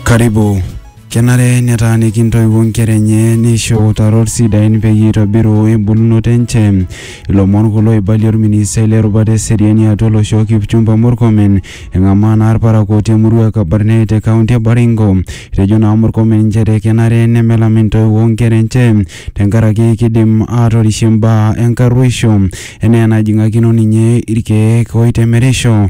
Karibu. Kenare netaaniki intoiwuo nkera enye neisho utarot sidain peyie eitobiru embulunoto enche. Ilomon kulo oibalie olministai le rubata eseriani atua olosho Kipchumba Murkomen eng'amaa naa ilparakuo te murua e Kabarnet te kaunti e Baringo. Etejo naa Murkomen nchere kenare nemelam intoiwuo nkera enche tenkaraki keidim aatorishie mbaa enkarruoisho enaa enajing'akino ninye ilkeek oitemerisho.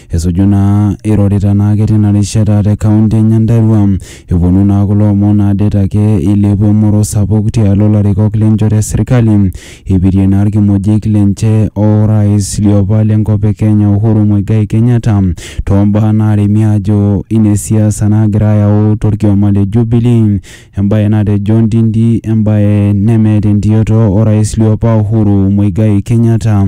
Esuju naa irorita naake tina rishata te kaunti e Nyandarua. Eponu naa kulo omon adet ake eilepu emoro sapuk tialo ilarikok le njoto e serkali eipirie naa ilkimojik lenche o orais liopa le nkop e Kenya Uhuru Muigai Kenyatta too mbaa naaremi aajo ine siasa naagira ayau to lkioma le Jubilee embae natejo Ndindi embae nemeeta entiyoto orais liopa Uhuru Muigai Kenyatta.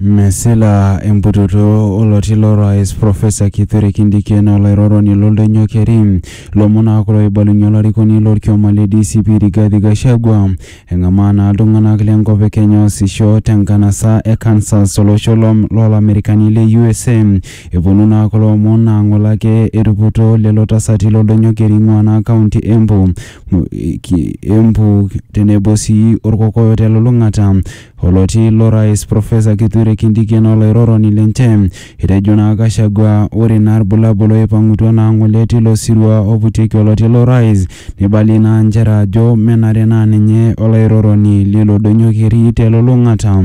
Mesila emputoto oloti lorais Profesa Kithure Kindiki enaa olairoroni l'oldoinyo kerin. Lomon naa kulo oibalunye olarikoni l'olkioma le DCP Rigathi Gachagua eng'amaa naa iltung'anak le nkop e Kenya oosisho te nkanasa e Kansas to losho loo lamerikani le usa. Eponu naa kulo omon aang'ole ake etuputo lelo tasati l'oldoinyo keri eing'ua naa kaunti e Embu Embu tenebo sii Olkokoyok telulung'ata olotii ilo rais Professor Kithure Kindiki enaa olairoroni lenche. Etejo naa Gachagua ore naa ilbulabul oipang'utua naa ng'ole tilo sirua oputieki olotii ilo rais neibalie naa nchere ajo menare naa ninye olairoroni lilo doinyio keri telulung'ata.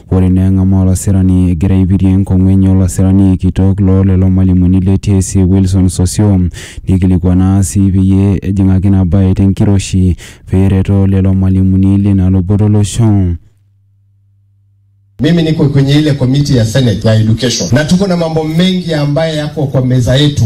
Ore naa eng'amaa olasirani egira aipirie enkong'u enye olasirani kitok loo lelo malimuni le TSC Wilson Sosio neikilikuana sii peyie ejing'aki ina bae te nkiroshi pee eretoo lelo malimuni leina luboto o losho. Mimi niko kwenye ile komiti ya senate ya education na tuko na mambo mengi ambaye yako kwa meza yetu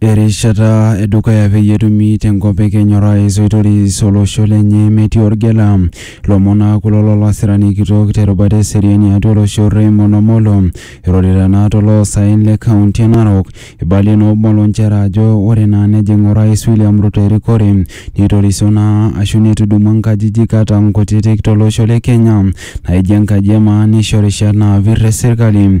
Erishata edukuya peyie etumi tenkop e Kenya orais oitoris olosho lenye metii olgela. Lomon naa kulo lo lasirani kitok terubata eseriani atua olosho Raymond Omolo eirorita naa to loosaen le kaunti e Narok. Eibalie naa Omolo nchere ajo ore naa nejing orais William Ruto erikore neitorisio naa ashu neitudumu nkajijik ata nkutitik to losho le Kenya naijo enkaji e maa neisho rishat naapir te serkali.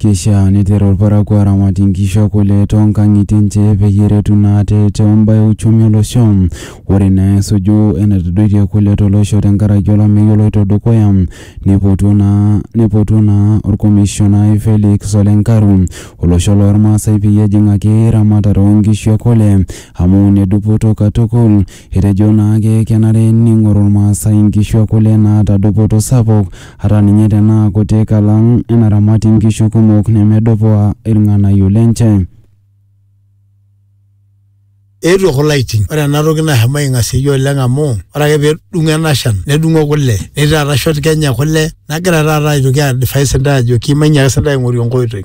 Keishaa neiter olparakuo aramat inkishu e kule too nkang'itie enche peyie eretu naa ate te mbaa e uchumi olosho. Ore naa esuju enaitadoitie kule to losho tenkaraki olameyu oloito dukuya neipotuo naa neipotuo naa olkomishonai Felix Ole Nkaru olosho loo Lmaasai peyie ejing'aki ramatare oo nkishu e kule amu ine dupoto katukul. Etejo naa ake kenare neing'oru Ilmaasai nkishu e kule naata dupoto sapuk ata ninye tenaa kutik alang enaramati nkishu kumok nemedupoa ilng'anayio lenche. Eetuo kulo aiting. Ore ena toki nashomo aing'asieyie oleng amu ore ake pee edung'o ena shan nedung'o kule. Netii taata shot Kenya e kule nagira taata aitoki ai advise intae ajoki mainyiaki sintae aing'oru enkae oitoi.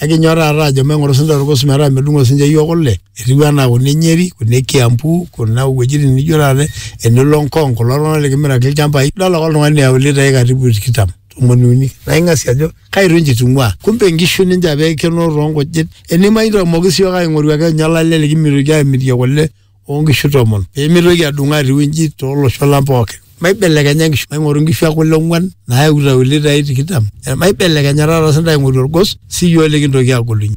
ekinyor taata ajo maing'oru sinche orgos metaa medung'o sinche yiok kule etiu anaa kuna e nyeri kuna e kiambu kuna wuejitin nijo taata ene lonkong kulo tung'anak likimiraki ilchambai idol ake oltung'ani eyau litai karibu tikitam tomoni uni naa ing'asi ajo kai toi inche itung'ua kumbe inkishu ninche apa eikenoo tonkujit enimaitie itamoki siyiok aing'oru ake ninye olale likimirie aimirie kule. oonkishu tomon pee meitoki adung'oo atiu inji too losho lang pooki. Maibelekenya inkishu maing'oru inkishu e kule ong'uan naayauta ilitai tikitam, maibelekenya taata sintae aing'oru olgos sii iyiook likintoki aagolu inji.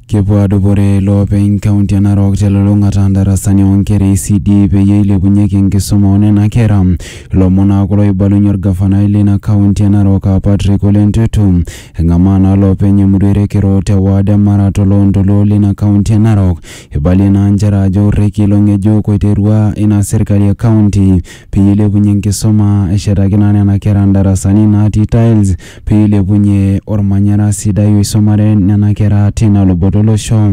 Kepuo aadupore iloopeny kaunti e Narok telulung'ata ndarasani oo nkera e ECD peyie eilepunyeki enkisuma oo nena kera. Ilomon naa kulo oibalunye olgafanai leina kaunti e Narok aa Patrick Ole Ntutu. Eng'amaa naa loopeny emurua e Rekero te ward e Marat o Loontoluo leina kaunti e Narok. Eibalie naa nchere ajo orrekie ilo ng'ejuk oiterua ina serkali e kaunti peyie eilepunye enkisuma eshetaki naa nena kera ndarasani naatii tiles peyie eilepunye olmanyara sidai oisumare nena kera teina luboto olosho.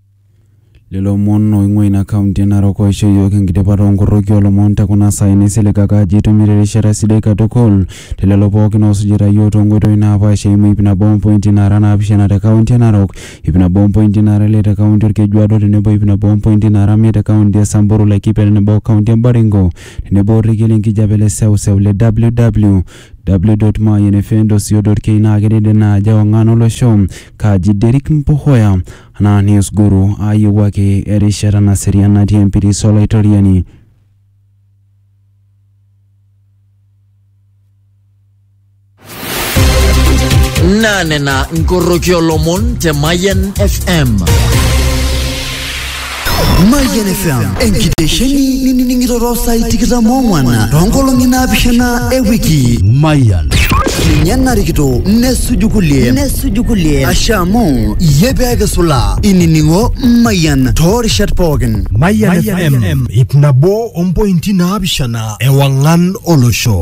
Lelo omon oing'ua ina county e Narok oisho iyiook enkidipata oo nkoroki oo lomon te kuna saai naisiligaki ajo etumito erishata sidai katukul te lelo pookin oosujita iyiook too nkoitoi naapasha eimu iip nabo oo mpointi naara naapishana te county e Narok, iip nabo oo mpointi naara ile te county Olkejuado tenebo iip nabo oo mpointi naara miet te county e Samburu, Laikipia tenebo o county e Baringo tenebo orekie le nkijape le seuseu le www.mayianfm.co.ke Naa keididi ina ajo ewang'an olosho. Kaji Derrick Mpohoya Anaa News Guru, aayieu ake erishata naserian natii empiris o Laitoriani. Naa nena nkoroki olomon te Mayian FM. Mayian FM, enkitesheni ninining'ito too saai tikitam oong'wan too nkolong'i naapishana e wiki. Mayian. Ninye narikito nesuju kulie. suju kulie ashe amu iyie pee kisulaa inining'o Mayian toorishat pookin. Mayian FM ip nabo ompointi naapishana ewang'an olosho.